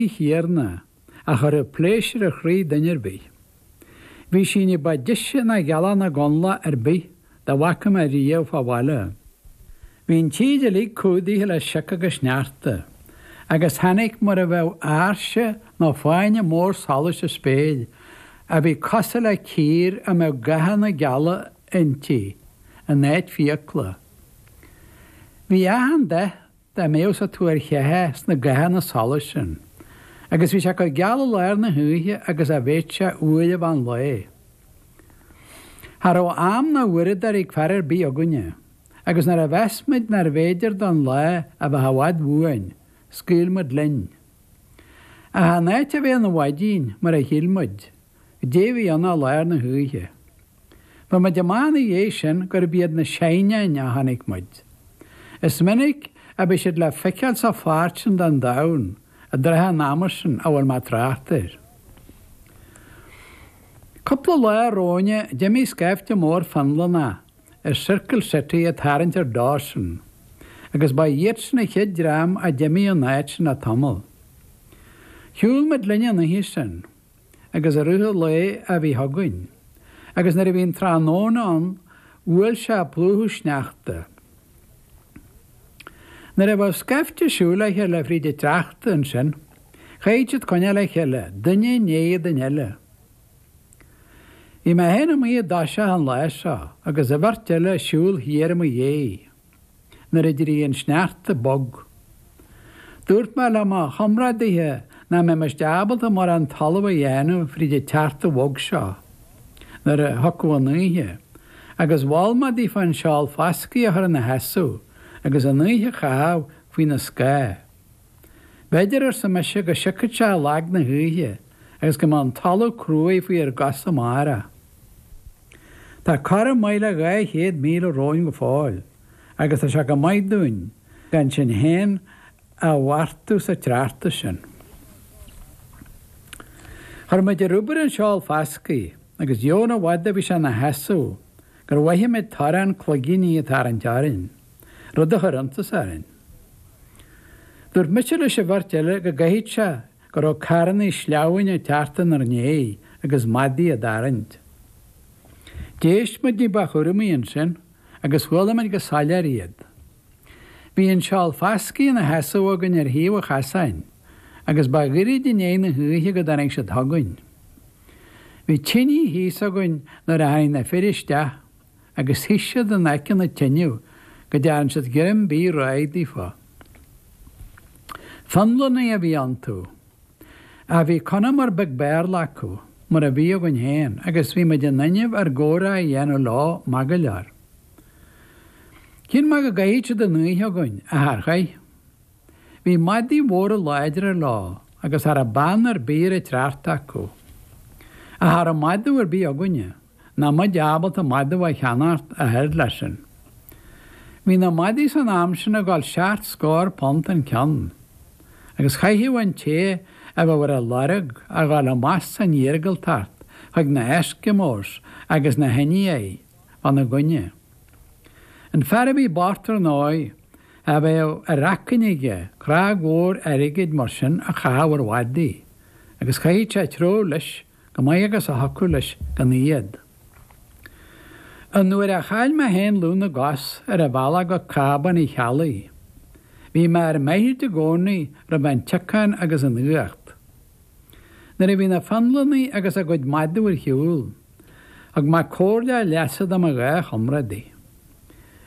Ní dhearna, a chuirfeadh pléisiúr ar chroí duine ar bith. Bhí sí ní ba deise ná gealach na gconlach ar bith dá bhfaca mé riamh fá bhaile. Bhí an tír uilig cumhdaithe le sioc agus sneachta, agus tháinig mar a bheadh áirse nó fáinne mór solais sa spéir a bhí cosúil le cíor a mbeadh gathanna geala inti in áit fiacla. Bhí achan dath Dá mbeadh sa tuar cheatha sna gathanna solais sin, agus bhí sé chomh geal i lár na hoíche agus a bheadh sé uair ar bith den lá. Cha raibh am ná uaireadóir ag fear ar bith againne, agus nuair a mheas muid nárbh fhéidir don lá a bheith i bhfad uainn, scaoil muid linn. Ach in áit é a bheith ina mhaidin, mar a shíl muid, goidé a bhí ann ach lár na hoíche. Fuair muid amach ina dhiaidh sin gurb iad na Saighneáin a chonaic muid. Is minic a bhí siad le feiceáil sa pháirt sin den domhan i dtrátha an ama sin a bhfuil mé ag trácht air. Cúpla lá romhainn d'imigh scaifte mór Fionlannach as Circle City ag tarraingt ar Dawson, agus ba iadsin an chéad dream a d'imigh ón áit sin le tamall. Shiúil muid linn an oíche sin. agus i rith an lae a bhí chugainn, agus nuair a bhí an tráthnóna ann bhuail sé ag plúchadh sneachta. Nuair a bheadh scaifte ag siúl le chéile fríd an tsneachta ansin, chaithfeadh siad coinneáil le chéile, duine i ndiaidh duine eile. Bhí mé féin amuigh i dtoiseach an lá seo, agus an bheirt eile ag siúl thiar i mo dhiaidh. Nuair a d'éirigh an sneachta bog, dúirt mé le mo chomrádaithe nach mbeimis ábalta mórán talamh a dhéanamh fríd an tsneachta bhog seo nuair a thiocfadh an oíche, agus mhol mé díofa an seál foscaidh a chur ina sheasamh agus an oíche a chaitheamh faoina scáth. B'fhéidir, arsa mise, go siocfadh sé i lag na hoíche agus go mbeadh an talamh cruaidh faoinár gcosa amárach. Tá corradh maith le dhá chéad míle romhainn go fóill agus tá sé chomh maith dúinn gan sinn féin a ghortú sa tsneachta sin. Chuir muid ar obair an seál foscaidh agus chan i bhfad a bhí sé ina sheasamh gur mhoithigh mé torann cloigíní ag tarraingt orainn. rud a chuir iontas orainn. Dúirt mise leis an bheirt eile go gcaithfeadh sé go raibh carrannaí sleamhnáin ag teacht inar ndiaidh agus madaidh á dtarraingt. D'éist muid ní ba chúramaí ansin agus chuala muid go soiléir iad. Bhí an seál foscaidh ina sheasamh againn ar thaobh an chasáin agus ba ghairid i ndiaidh na hoíche go dtáinig siad chugainn. Bhí tinidh thíos againn nuair a tháinig na fir isteach. agus shuigh siad in aice na teineadh go dtearn siad greim bídh réidh daofa. Fionlannaigh a bhí iontu. Ach bhí conamar beag Béarla acu, mar a bhí againn féin, agus bhí muid in innimh ár gcomhrá a dhéanamh leo maith go leor. Chinn mé go gcaithfeadh siad an oíche againn, ach char chaith. Bhí madaí mhóra láidre leo agus cha rabh beann ar bith ar an tsneachta acu. Ach cha rabh madadh ar bith againne. ná muid ábalta madadh a cheannacht ach oiread leis sin. Bhí na madaí san am sin ag dul seacht scór punt an ceann, agus chaithfeadh an té a bheadh ar a lorg a dhul amach san iargúltacht chuig na hEskimos agus na hIndiaigh fána gcoinne. An fear a bhí bocht, ar ndóigh, cha bheadh ar acfainn aige crág mhór airgid mar sin a chaitheamh ar mhadaí, agus chaithfeadh sé treabhadh leis chomh maith agus a thiocfadh leis gan iad. Ón uair a chaill mé féin lúth na gcos ar an bhealach go Cábán Uí Cheallaigh, bhí mé ar m'fhaichill i gcónaí roimh an tsiocán agus an fhuacht. Nuair a bhí na Fionlannaigh agus a gcuid madadh ar shiúl, thug mé comhairle a leasa do mo dhá chomrádaí.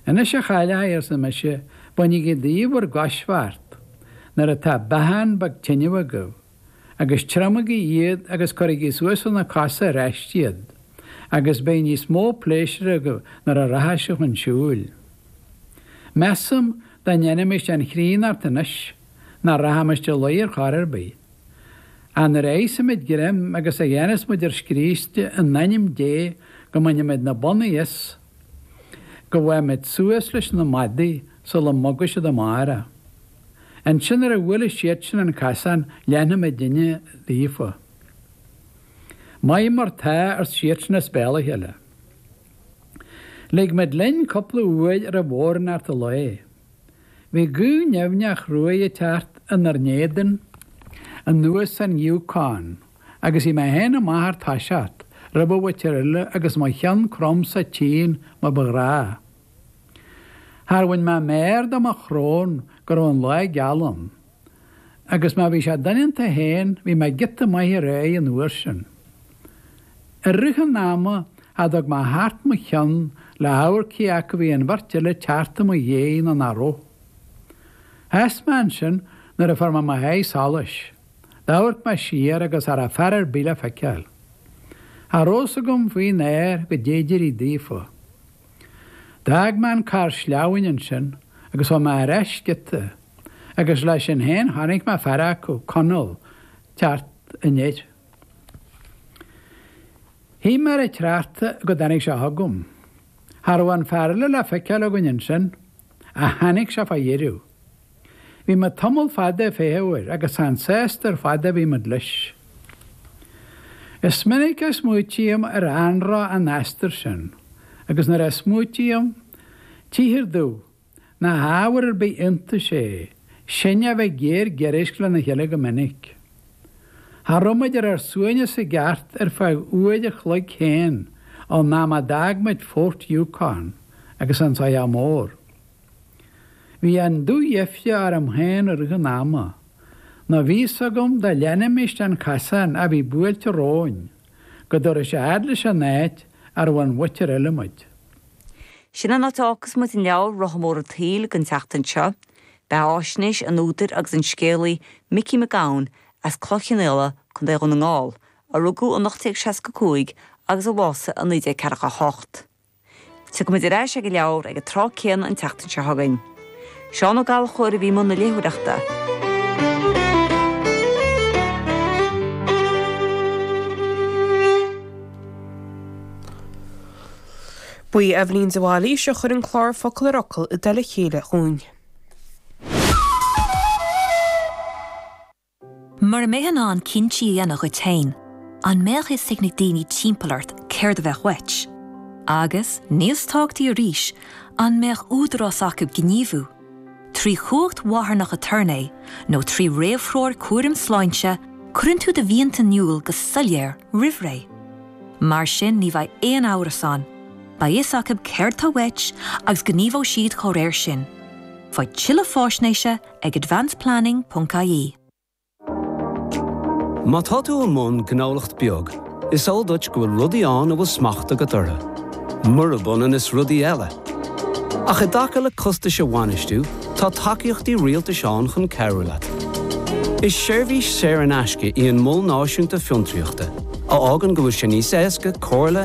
Anois, a chailleacha, arsa mise, bainigí daoibh bhur gcoisbheart nuair atá beochán beag tineadh agaibh. agus triomaigí iad agus cuirigí suas ar na cosa ar ais iad, agus beidh níos mó pléisiúir agaibh nuair a rachaidh sibh chun siúil. Measaim, dá ndéanaimis an chríonnacht anois, nach rachaimis a luí ar chor ar bith. Ach nuair a íosfaimid greim agus a dhéanfas muid ár scríste in ainm Dé go mbainimid na bonnaí as go bhfaighimid suas leis na madaidh sula mboga siad amárach. Ansin nuair a bhuailfeas siadsan an casán leanfaidh muidinne daofa. Maith mar tá, arsa siadsan as béal a chéile. Lig muid linn cúpla uair roimh bhodhránacht an lae. Bhí gaoth nimhneach chruaidh ag teacht inár n-éadan anuas an Yukon agus bhí mé féin amach ar toiseach roimh an bheirt eile agus mo cheann crom sa tsín mar ba ghnáth. Char bhain mé méar de mo shrón go raibh an lá geal ann, agus má bhí sé doineanta féin bhí mé giota maith ar aghaidh an uair sin. I rith an ama cha dtug mé thart mo cheann le hamharc cé acu bhí an bheirt eile ag teacht i mo dhéidh nó nach raibh. Sheas mé ansin nuair a fuair mé mo sháith solais. D'amharc mé siar agus cha raibh fear ar bith le feiceáil. Cha rabh fhios agam faoin aer goidé a d'éirigh daofa. D'fhág mé an carr sleamhain ansin agus chuaigh mé ar ais giota agus leis sin féin chonaic mé fear acu, Conall, ag teacht aniar. Shuigh mé ar an tsneachta go dtáinig sé chugam. Cha raibh an fear eile le feiceáil againn ansin ach tháinig sé fá dheireadh. Bhí mé tamall fada ag feitheamh air agus chan sásta ar fad a bhí muid leis. Is minic a smaoitím ar anró an aistir sin, agus nuair a smaoitím, tchíthear domh nach ábhar ar bith iontais é sinne a bheith géar giorraisc lena chéile go minic. Cha raibh muid ar ár suaimhneas i gceart ar feadh uair a chloig féin ón am a d'fhág muid Fort Yukon agus an soitheach mór. Bhí an dúdheifre orm féin i rith an ama. Nó bhí fhios agam dá leanfaimis den chasán a bhí buailte romhainn, go dtabharfadh sé fhad leis an áit a raibh an mhuintir eile muid. Sin an áit a fhágfas muid an leabhar, Rotha Mór an tSaoil, don tseachtain seo. Beathaisnéis an údair agus an scéalaí, Micí Mac Gabhann, as Cloich Chionnaola, Co. Dhún na nGall, a rugadh in 1865 agus a bhásaigh in 1948, Tiocfaidh muid ar ais ag an leabhar ag an tráth céanna an tseachtain seo chugainn. Seán Ó Gallchóir a bhí i mbun na léitheoireachta. Ba í Eibhlín de Bhailís a chuir an clár Focal ar Fhocal i dtoll a chéile dhúinn. Mura mbeifeá in ann cinntí a dhéanamh dhuit féin, an mbeadh fhios ag na daoine timpeall ort céard a bheadh uait? Agus, níos tábhachtaí arís, an mbeadh údarás acu gníomhú, trí chumhacht mharthanach aturnae nó trí réamhthreoir cúraim sláinte, cuireann tú do mhianta in iúl go soiléir roimhré. Mar sin ní bheidh aon amhras ann, beidh fhios acu céard tá uait agus gníomhóidh siad dá réir sin. Faigh tuilleadh faisnéise ag advanceplanning.ie. Má tá tú i mbun gnólacht beag, is eol duit go bhfuil rudaí ann a bhfuil smacht agat orthu, murab ionann is rudaí eile. Ach i dtaca le costais a bhainistiú, tá tacaíochtaí rialtais ann chun cabhrú leat. Is seirbhís saor in aisce í an Mol Náisiúnta Fiontraíochta, a fhágann go bhfuil sé níos éasca comhairle,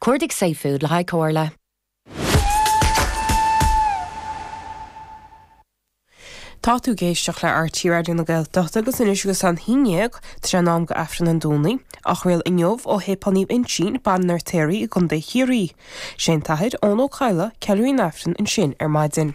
Cuardaigh safefood le haghaidh comhairle. Tá tú ag éisteacht le RTÉ Raidió na Gaeltachta agus anois agus an haon déag tá sé in am do Aifreann an Domhnaigh á chraoladh inniu ó Shéipéal Naomh Uinseann, Baile an Fheirtéaraigh i gContae Chiarraí. Sé an tAthair Eoghan Ó Cadhla ceiliúraí an Aifrinn ansin ar maidin.